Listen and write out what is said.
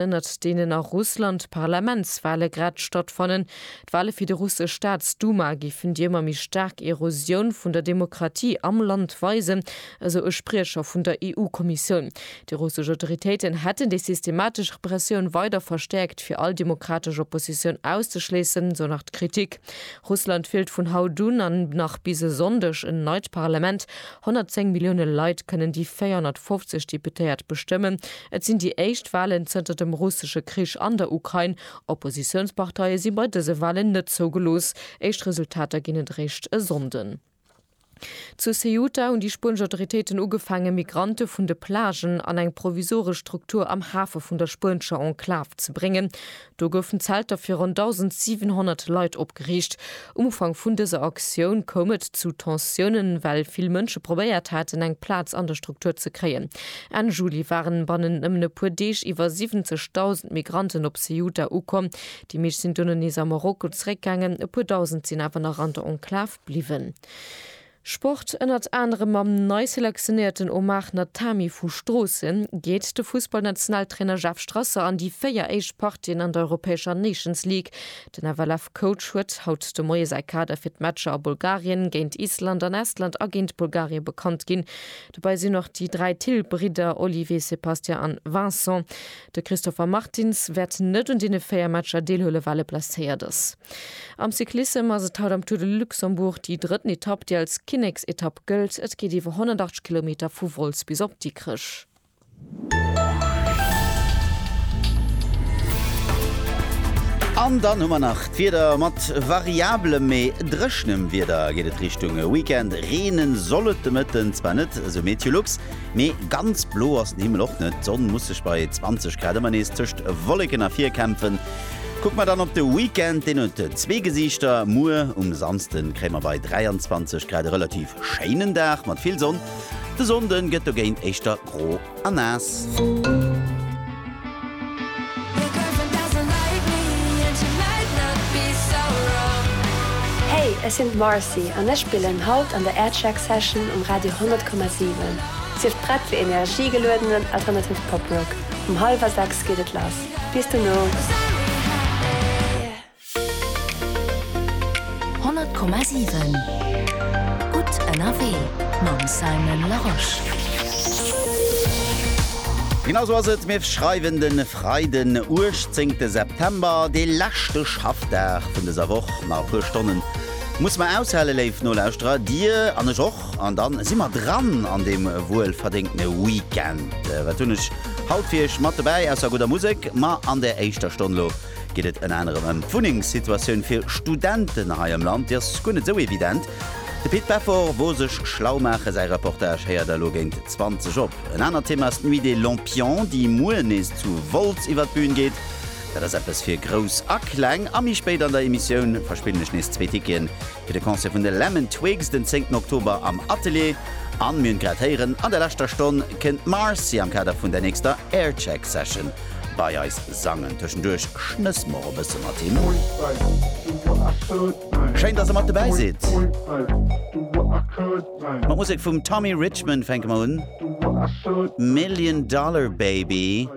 ënnert deenen a Russland d'Parlamentswale grad stattfannen. D'Wale fir déi russesch Staatsduma géifen déi ëmmer méi staark Erosioun vun der Demokratie am Land weisen, esou e Spriecher vun der EU-Kommissioun. Déi russesch Autoritéiten hätten déi systematesch Repressioun weider verstäerkt, fir all demokratesch Oppositioun auszeschléissen, esou nach d'Kritik. Russland wielt vun haut un an nach bis e Sonndeg en neit Parlament. 110 Millioune Leit kënnen déi 450 Deputéiert bestëmmen. Et sinn déi éischt Walen zënter dem russesche Krich an der Ukrain. Oppositiounsparteie si bei dëse Walen net zougelooss. Éischt Resultater ginn et eréischt e Sonnden. Zu Ceuta hunn déi spuenesch Autoritéiten ugefaangen, Migrante vun de Plagen an eng provisoresch Struktur am Hafe vun der spuenescher Enklav ze bréngen. Do goufen Zelter fir ronn 1.700 Leit opgeriicht. Um Ufank vun dëser Aktioun koum et zu Tensiounen, well vill Mënsche probéiert haten, eng Plaz an der Struktur ze kréien. Enn Juli waren bannen nëmmen e puer Deeg iwwer 70.000 Migranten op Ceuta ukomm. Déi meescht sinn dono nees a Marokko zeréckgaangen, e puer Dausend sinn awer nach an der Enklav bliwwen. Sport, Ënnert anerem mam nei selektionéierten Omar Natami vu Stroossen geet de Fussballnationaltrainer Jeff Strasser an déi véier éischt Partien an der europäescher Nations League. Den FLF-Coach huet haut de Moie säi Kader fir d'Matcher a Bulgarien, géint Island an Estland a géint Bulgarie bekannt ginn. Dobäi sinn och déi dräi Thill-Bridder Olivier, Sébastien an Vincent. De Christopher Martins wäert net un deene véier Matcher deelhuelen, well e blesséiert ass. Am Cyclissem ass et haut am Tour de Luxembourg déi drëtten Etapp, déi als Kinneksetapp gëllt. Et geet iwwer 180 Kilometer vu Wolz bis op Dikrech. An dann hu mer nach d'Wieder, mat variablem, mee dréchenem Wieder geet et Richtung Weekend. Reenen soll et de Mëtten zwar net, esou MeteoLux, mee ganz blo ass den Himmel och net. D'Sonn muss sech bei 20 Grad ëmmer nees tëscht Wolleken ervirkämpfen. Kucke mer dann op de Weekend, deen huet zwee Gesiichter. Muer um Samsde kréie mer bei 23 Grad e relativ schéinen Dag mat vill Sonn. De Sonnde gëtt dogéint éischter gro a naass. Hey, ech sinn d'Marcy an ech spillen haut an der Aircheck Session um Radio 100,7. Sief prett fir energiegeluedenen alternativen Poprock. Um hallwer 6 geet et lass. Bis dono! Honnert Komma siwen Gutt ënnerwee mam Simon Larosche. Genau sou ass et, mir schreiwen de Freiden 18 de September, de leschte Schaffdag vun dëser Woch. Nach e puer Stonnen muss mer aushale, léif Nolauschterer, Dir an ech och. An dann si mer dran an deem wuel verdéngtene Weekend. Wat hunn ech haut fir iech mat dobäi ausser gudder Musek? Ma an der éischter Stonn elo geet et ënner anerem ëm d'Wunnengssituatioun fir Studenten hei am Land. Déi ass guer net esou evident. De Pit Beffort wor sech schlau maachen. Säi Reportage héiert der elo géint 20 op. En anert Thema ass d'Nuit des Lampions, déi muer nees zu Wolz iwwer d'Bühn geet. Dat ass eppes fir Grouss a Kleng. A méi spéit an der Emissioun verspillen ech nees zwee Ticketen, Fir de Concert vun de Lemon Twigs den 10 Oktober am Atelier. An, mir hunn et grad héieren, an der leschter Stonn kënnt d'Marcy am Kader vun der nächster Aircheck Session bei eis sangen. Tëschenduerch schnësse mer och e bësse mat him. Schéin, dass der mat dobäi sidd. Mat Musek vum Tommy Richman fänke mer un. Million Dollar Baby.